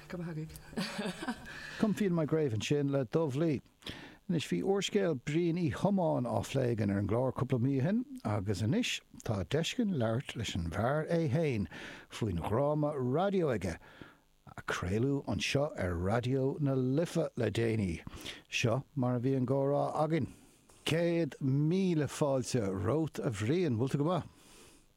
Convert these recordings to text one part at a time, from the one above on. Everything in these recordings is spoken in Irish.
Caoinfead ar m'uaigh ansin le Dubh Lí. Anois, bhí úrscéal Bhriain Uí Thiomáin á phlé again ar an gclár cúpla mí ó shin agus anois tá deis againn labhairt leis an bhfear é fhéin faoin dhráma raidió aige a chraolfar anseo ar Raidió na Life le déanaí. Seo mar a bhí an gcomhrá againn. Céad míle fáilte romhat a Bhriain, bhfuil tú go maith?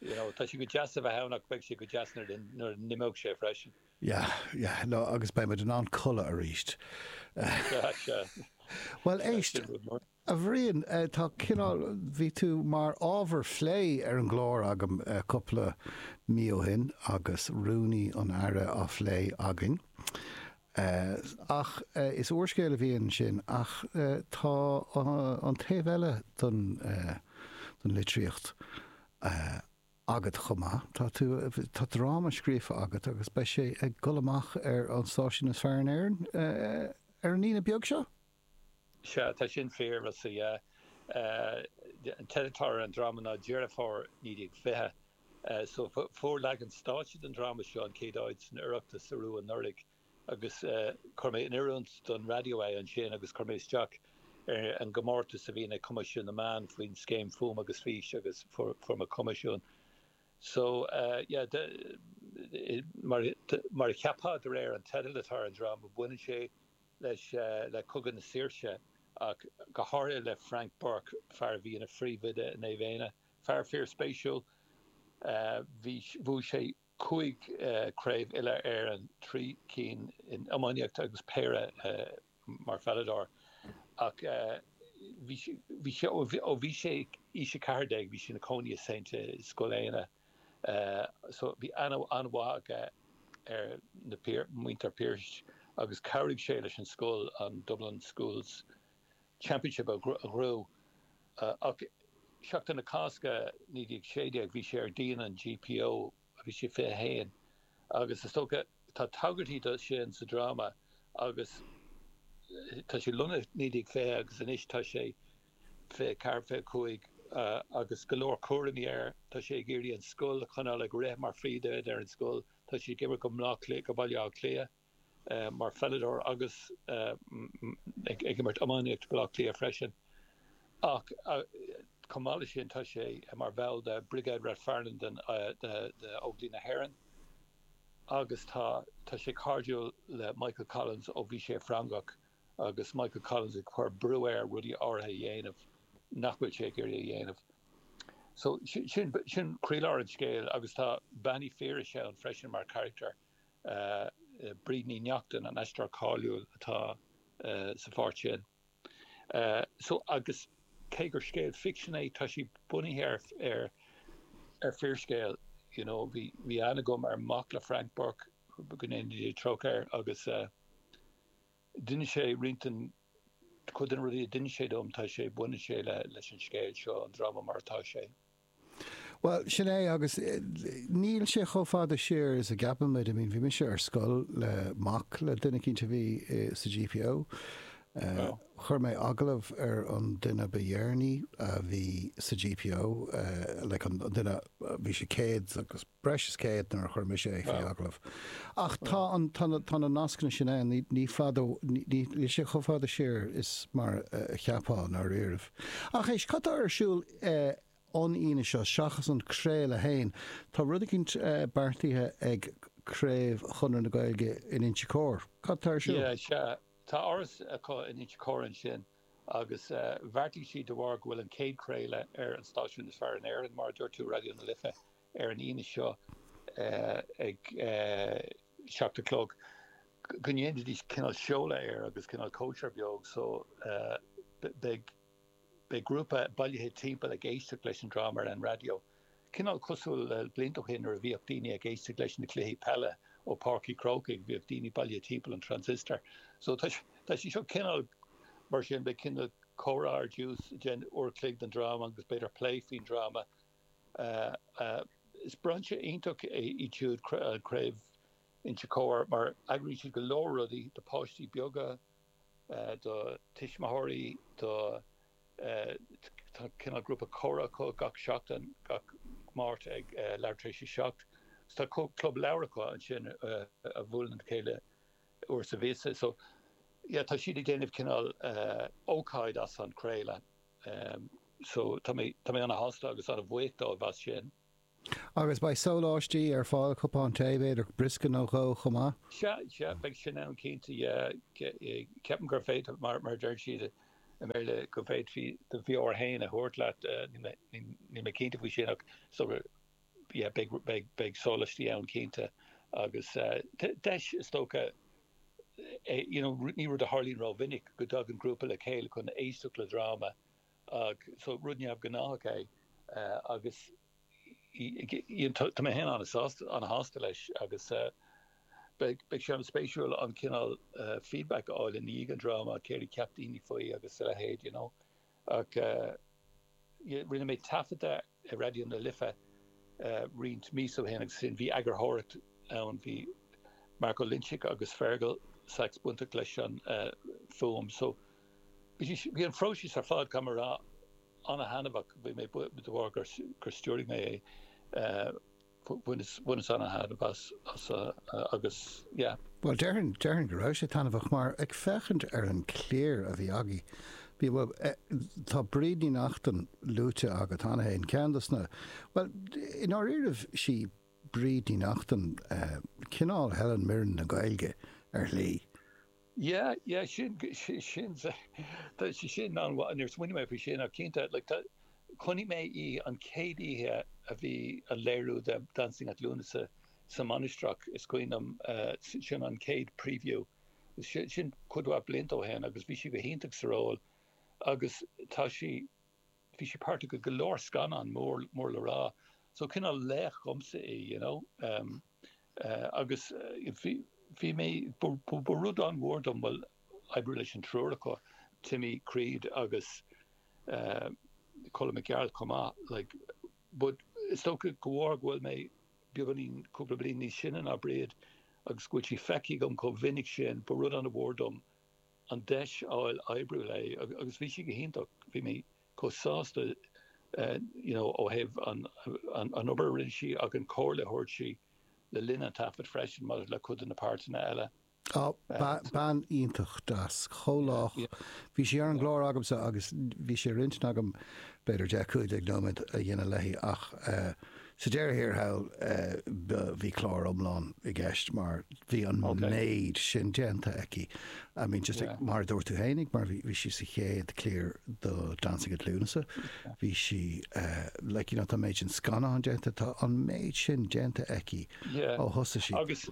You know, tá sé go deas a bheith ann ach beidh sé go deas nuair a n-imeoidh sé freisin. Yeah, yeah, no, agus beidh muid in ann codladh arís. Sea, sea. Bhuel, éist, a Bhriain, eh, tá cineál, bhí tú mar ábhar phlé ar an gclár agam eh, cúpla mí ó shin agus Rúnaí an Aire á phlé againn. Ach is úrscéal a bhí ansin. Ach tá an taobh eile den litríocht agat chomh maith. Tá dráma scríofa agat agus beidh sé ag dul amach ar an stáisiún is fearr in Éirinn ar an Aoine beag seo. Sea, tá sin fíor, so is é an teideal atá ar an dráma ná Deireadh Fómhair 1920. So fuair leagan stáitse den dráma seo an chéad áit san Oireachtas arú anuraidh agus chuir mé in oiriúint don raidió é ansin agus chuir mé isteach ar an gcomórtas a bhíonn ag Coimisiún na Meán faoin scéim Fuaim agus Fís agus fuair mé coimisiún. So, yeah, mar a cheapfá de réir an teidil atá ar an dráma, baineann sé leis, le Cogadh na Saoirse ach go háirithe le Frank Burke, fear a bhí ina phríomhoide i Naomh Éanna. Fear fíorspéisiúil. Bhuaigh sé cúig chraobh uile-Éireann, trí cinn in iománaíocht agus péire mar pheileadóir. Ach ó bhí sé in aois a 14 bhí sé ina chónaí i St. i Scoil Éanna. so bhí aithne an-mhaith aige ar na, muintir Pearse agus chabhraigh sé leis an scoil, an Dublin Schools Championship a ghnóthú. Ach Seachtain na Cásca 1916 bhí sé ar díon an GPO, bhí sé 21 agus is dócha, tá tagairtí do sin sa dráma agus tá sé lonnaithe 1920 agus anois tá sé fiche ceathair fiche cúig agus go leor cúraimí air. Tá sé ag iarraidh an scoil a choinneáil ag rith mar phríomhoide ar an scoil. Tá sé ag imirt do Bhaile Átha Cliath mar pheileadóir agus ag imirt iománaíocht i mBaile Átha Cliath freisin. Ach chomh maith leis sin tá sé mar bhall de Brigade Rathfarnham d'Óglaigh na hÉireann agus tá sé cairdiúil le Michael Collins ó bhí sé i Frongoch. agus Michael Collins ag cur brú air rudaí áirithe a dhéanamh nach bhfuil sé ag iarraidh a dhéanamh. So sin, sin croílár an scéil agus tá Bean Uí Phiarais ann freisin mar charachtar, Bríd Ní Neachtain, an aisteoir cáiliúil atá sa pháirt sin. So agus cé gur scéal ficsin é tá sé bunaithe ar, ar, ar fíorscéal, you know, bhí, bhí aithne agam ar mhac le Frank Burke, go ndéana Dia trócaire air, agus eh. D'inis sé roinnt den, cuid de na rudaí a d'inis sé dom, tá sé, baineann sé le, leis an scéal seo, an dráma mar atá sé. Bhuel, sin é, agus níl sé chomh fada siar is a gceapaimid. I mean, bhí mise ar scoil le mac le duine eicínt a bhí sa GPO. Chuir mé agallamh ar an duine ba dheireanaí a bhí sa GPO, like an duine, bhí sé céad agus, breis is céad nuair a chuir mise é faoi agallamh. Ach tá an, tá na, tá na nascanna sin ann, ní, ní fadó, ní, ní, níl sé chomh fada siar is mar a cheapfá i ndáiríribh. Ach éist, cad tá ar siúl eh an Aoine seo seachas an craoladh fhéin, tá rud eicínt eh beartaithe ag craobh Chonradh na Gaeilge in Inse Cór, cad tá ar siúl? Yeah, sea, tá áras acu in Inse Cór ansin agus eh bheartaigh siad de bharr go bhfuil an chéad chraoladh ar an stáisiún is fearr in Éirinn, mar a dúirt tú, Raidió na Life, ar an Aoine seo ag seacht a chlog go ndéanfaidís cineál seoladh air agus cineál cóisir beag so beidh beidh grúpa bailithe timpeall ag éisteacht leis an dráma ar an raidió. Cineál cosúil le blianta ó shin nuair a bhíodh daoine ag éisteacht leis na cluichí peile ó Páirc Uí Chrócaigh bhíodh daoine bailithe timpeall an transistor so tá tá sé seo cineál mar sin beidh cineál comhrá ar dtús ansin uair chloig den dráma agus b'fhéidir plé faoin dráma Is brainse iontach é iad siúd, Craobh Inse Chór, mar eagraíonn siad go leor rudaí do pháistí beaga, do tuismitheoirí, do, tá cineál grúpa comhrá acu gach seachtain, gach Máirt ag leathuair tar éis a seacht, is tá club leabhar acu ansin a bhuaileann le chéile uair sa mhíosa. So yeah tá siad ag déanamh cineál ócáid as an chraoladh. so tá mé tá mé ana shásta agus ana bhuíoch dóibh as sin. Agus beidh sóláistí ar fáil, cupán tae b'fhéidir, briosca nó dhó chomh maith? Sea, sea, beidh sin ann cinnte, yeah. Ceapaim gur féidir, mar a deir siad i mBéarla, go bhféadfaí do bheoir fhéin a thabhairt leat, níl mé cinnte faoi sin ach sure. yeah beidh beidh sólaistí ann cinnte agus deis is dócha é you know ní rud a tharlaíonn ró mhinic go dtagann grúpa le chéile chun éisteacht le dráma ach so rud neamh gnáthach é agus you know tá mé féin ana sásta ana shásta leis agus beidh beidh sé ana spéisiúil an cineál feedback a fháil i ndiaidh an dráma céard a cheap daoine faoi agus a leithéid you know Ach rinne mé taifeadadh i Raidió na Life roinnt míosa ó shin agus ansin bhí eagarthóireacht ann, bhí Mark Ó Loinsigh agus Fearghal Saxe bainteach leis an fuaim so bhí an phróiseas ar fad, caithfidh mé a rá, an-thaitneamhach de bharr gur stiúraigh mé é. bhaineas ana-thairbhe as agus yeah. Bhuel, déarfainn, déarfainn go raibh sé taitneamhach mar, ag féachaint ar an chliar a bhí agaibh, bhí, bhuel, tá Bríd Ní Neachtain luaite agat cheana féin, ceann dos na, bhuel, i ndáiríribh, sí Bríd Ní Neachtain cineál Helen Mirren na Gaeilge, ar shlí. Yeah, yeah, sin, sin, sin an, níor smaoinigh mé faoi sin ach cinnte, like tá, chonaic mé í an chéad oíche a bhí an léiriú de Dancing at Lughnasa sa Mainistreach, is cuimhin liom, sin an chéad preview, sin cuid mhaith blianta ó shin agus bhí sí go hiontach sa ról agus tá sí, Bhí sí páirteach i go leor scannán mór, mór le rá, so cineál laoch dhomsa í, you know. Agus bhí, bhí mé, ba rud an-mhór dom, bhuel, oibriú leis an triúr acu, Timmy Creed agus Colm Mac Gearailt chomh maith, like, but is dócha de bharr go bhfuil mé beagáinín, cúpla bliain níos sine ná Bríd agus go bhfuil sí feicthe agam chomh minic sin, ba rud an-mhór dom. an deis a fháil oibriú léi agus bhí sí go hiontach, bhí mé chomh sásta you know ó thaobh an obair a rinne sí ach an comhairle a thabhairt sí le linn an taifid freisin maidir le cuid de na páirteanna eile. Á, bean iontach, deas, chomh lách, bhí sí ar an gclár agamsa agus bhí sé ar intinn agam b'fhéidir deich cúig déag nóiméad a dhéanamh léi ach eh, Sa deireadh thiar thall bhí clár iomlán i gceist mar bhí an méid sin déanta aici. I mean just like mar a dúirt tú fhéinig mar bhí sí sa chéad chliar do Dancing at Lughnasa, bhí sí eh, like you know tá méid sin scannán déanta, tá an méid sin déanta aici ó thosaigh sí. Agus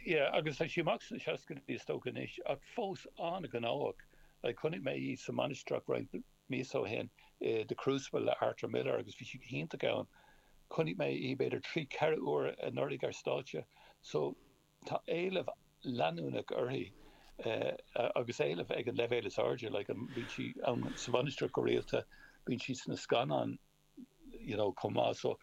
yeah agus tá sí amach sna seascaidí is dócha anois ach fós an-ghnóthach, like chonaic mé í sa Mainistreach roinnt míosa ó shin i The Crucible le Arthur Miller agus bhí sí go hiontach ann. Chonaic mé í b'fhéidir trí, ceithre uair anuraidh ar stáitse so tá éileamh leanúnach uirthi agus éileamh uirthi ag an leibhéal is airde, like bíonn sí ins an Mhainistir go rialta, bíonn sí sna scannáin you know chomh maith so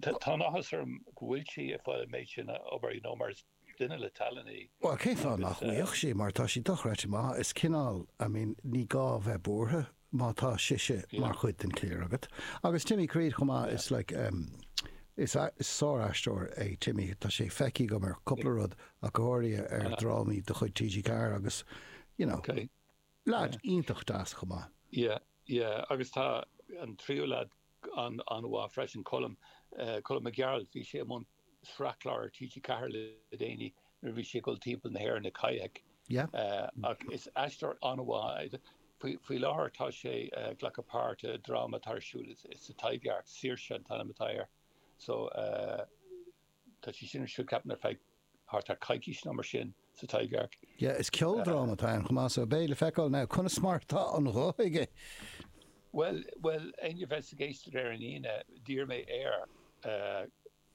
tá an-áthas orm go bhfuil sí ag fáil an méid sin oibre you know mar is. Duine le tallann í. Bhuel, cén fáth nach mbeadh sí, mar tá sí dochreidte maith. Is cineál, I mean, ní gá a bheith buartha má tá sise mar chuid den chléir agat. Agus Timmy Creed chomh maith, is like em is sár-aisteoir é Timmy, tá sé feicthe agam ar cúpla rud ach go háirithe ar dhrámaí de chuid TG4 agus you know. Lead iontach deas chomh maith. Yeah, yeah agus tá an tríú lead an-mhaith freisin, Colm, Colm Mac Gearailt. Bhí sé i mbun sraith clár ar TG4 le déanaí nuair a bhí sé ag dul timpeall na hÉireann ina kayak. Yeah. Ach is aisteoir an-mhaith é. Faoi láthair tá sé ag glacadh páirt i dráma atá ar siúl sa Taibhdhearc, Saoirse an t-ainm atá air. So eh. Tá sé sin ar siúl, ceapaim, ar feadh thart ar coicís nó mar sin sa Taibhdhearc. Yeah, is ceoldráma atá ann chomh maith, so beidh le feiceáil now conas mar atá an guth aige! Bhuel, bhuel, éinne a bheas ag éisteacht ar an Aoine, d'iarr mé air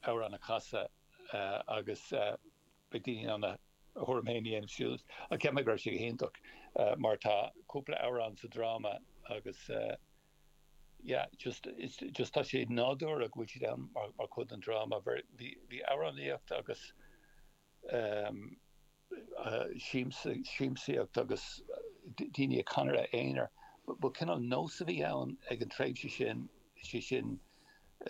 amhrán a chasadh agus beidh daoine in ann a dtuairim féin a dhéanamh suas ach ceapaim go raibh sé go hiontach mar tá cúpla amhrán sa dráma agus Yeah just it's just tá sé nádúrtha go bhfuil siad ann mar mar chuid den dráma óir bhí bhí amhránaíocht agus ehm eh siamsa siamsaíocht agus d- daoine ag canadh ina n-aonar ba, ba cineál nós a bhí ann ag an tréimhse sin sé sin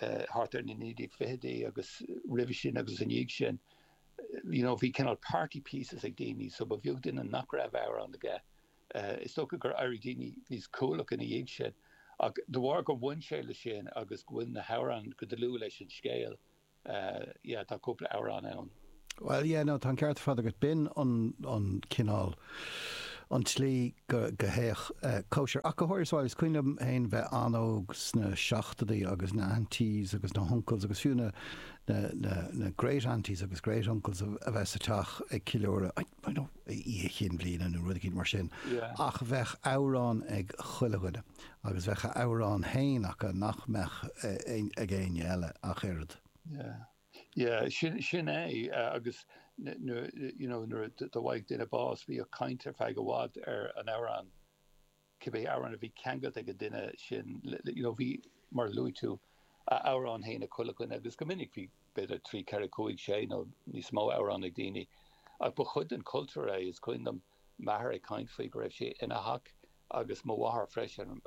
eh thart ar na naoi déag fichidí agus roimhe sin agus ina dhiaidh sin eh you know bhí cineál party pieces ag daoine so ba bheag duine nach raibh amhrán aige Is dócha gur éirigh daoine níos cúthalaí ina dhiaidh sin ach de bharr gur bhain sé leis sin agus go bhfuil na hamhráin go dlúth leis an scéal, yeah, tá cúpla amhrán ann. Bhuel, yeah, no, tá an ceart ar fad agat. B'in an, an cineál, an tslí go, go théadh cóisir. Ach go háirithe sa bhaile. Is cuimhin liom féin bheith an-óg sna seachtóidí agus na aunties agus na huncles agus fiú na, na, na, na great-aunties agus great-uncles a bheith sa teach ag ceiliúradh. I dunno, oíche chinn bhliana nó rud eicínt mar sin. Ach bheadh amhrán ag chuile dhuine agus bheadh a amhrán féin acu nach mbeadh ag éinne eile ach oiread. Yeah, yeah, sin é agus nuair a, you know, nuair a d'fhaigheadh duine bás bhíodh caint ar feadh i bhfad ar an amhrán. cibé amhrán a bhí ceangailte leis an duine sin le, you know, bhí, mar a luaigh tú, a amhrán féin ag chuile dhuine agus go minic bhí b'fhéidir trí, ceithre, cúig, sé nó níos mó amhrán ag daoine. Ach ba chuid den chultúr é. Is cuimhin liom m'athair ag caint faoi go raibh sé ina theach agus mo mháthair freisin,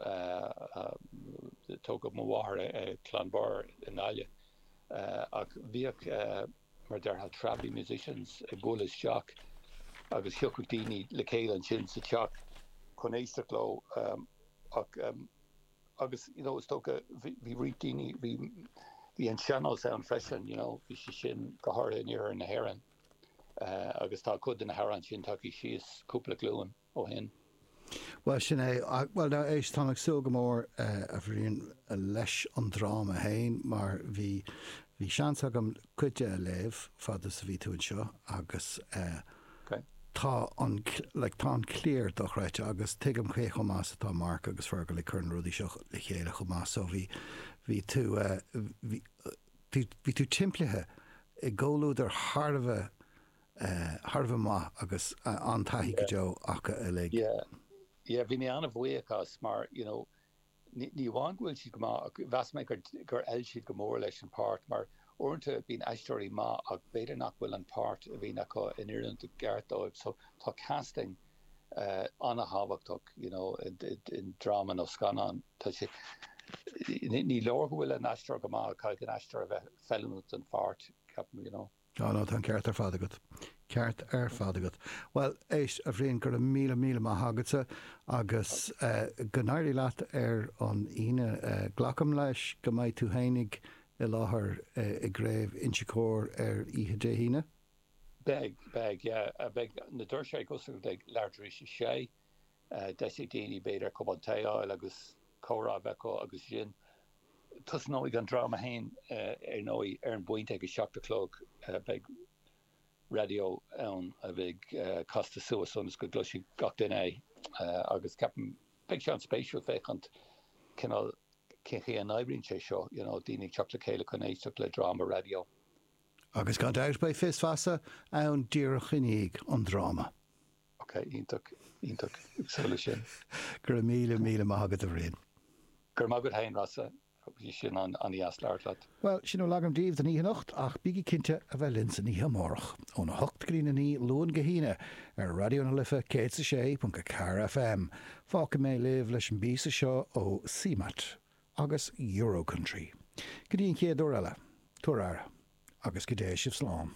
tógadh mo mháthair i gCluain Bearrúin i nGaillimh, ach bhíodh, mar a déarfá, travelling musicians ag bualadh isteach agus thiocfadh daoine le chéile ansin sa teach chun éisteacht leo ach agus, you know, is dócha bhí roinnt daoine, bhí, bhí an sean-nós ann freisin, you know, bhí sé sin go háirithe in iarthar na hÉireann agus tá cuid de na hamhráin sin tagtha síos cúpla glúin. ó shin. Bhuel, sin é. Bhuel, now, éist, táim ag súil go mór, a Bhriain, leis an dráma féin, mar bhí, bhí seans agam cuid de a léamh, fad is a bhí tú anseo, agus eh, tá an, like, tá an cliar dochreidte, agus tuigim cé chomh maith is atá Mark agus Fergal ag cur na rudaí seo le chéile chomh maith, so bhí, bhí tú eh, bhí, bhí tú timpeallaithe i gcomhluadar thar a bheith, thar a bheith maith agus an-taithí go deo acu uilig. Yeah, yeah, bhí mé an-bhuíoch as, mar you know ní amháin go bhfuil siad go maith, mheas mé gur fheil siad go mór leis an páirt mar uaireanta bíonn aisteoirí maith ach b'fhéidir nach bhfuil an páirt a bhíonn acu in oiriúint i gceart dóibh so tá casting an-thábhachtach you know i ndráma nó scannán tá sé ní leor go bhfuil an aisteoir go maith caithfidh an aisteoir a bheith feiliúnach don pháirt ceapaim you know. Á no, tá an ceart ar fad agat. ceart ar fad agat. Bhuel, éist, a Bhriain, go raibh míle míle maith agatsa agus go n-éirí leat ar an Aoine. Glacaim leis go mbeidh tú fhéinig i láthair i gCraobh Inse Chór ar oíche Dé hAoine? Beidh, beidh, yeah. Beidh na doirse ag oscailt ag leath tar éis a sé. Deis ag daoine b'fhéidir cupán tae a fháil agus comhrá a bheith acu agus ansin Tosnóidh an dráma fhéin ar ndóigh ar an bpointe ag a seacht a chlog. Beidh raidió ann a bheidh casta suas ionas go gcloisfidh gach duine é agus ceapaim beidh sé an-spéisiúil féachaint cineál cén chaoi a n-oibríonn sé seo, you know, daoine ag teacht le chéile chun éisteacht le dráma raidió. Agus gan dabht beidh féasta feasa ann díreach i ndiaidh an dráma. Ok, iontach, iontach. Ag súil leis sin. Go raibh míle, míle maith agat, a Bhriain. Go raibh maith agat fhéin, Rossa. Bhí sé an-deas labhairt leat. Bhuel, sin a bhfuil agam daoibh don oíche anocht, ach bígí cinnte a bheith linn san oíche amárach, óna hocht go dtí'n a naoi, Luan go hAoine, ar Raidió na Life 106.4 FM. Fágfaidh mé libh leis an bpíosa seo ó CMAT agus Eurocountry. Go dtí an chéad uair eile, tabhair aire, agus go dté sibh slán.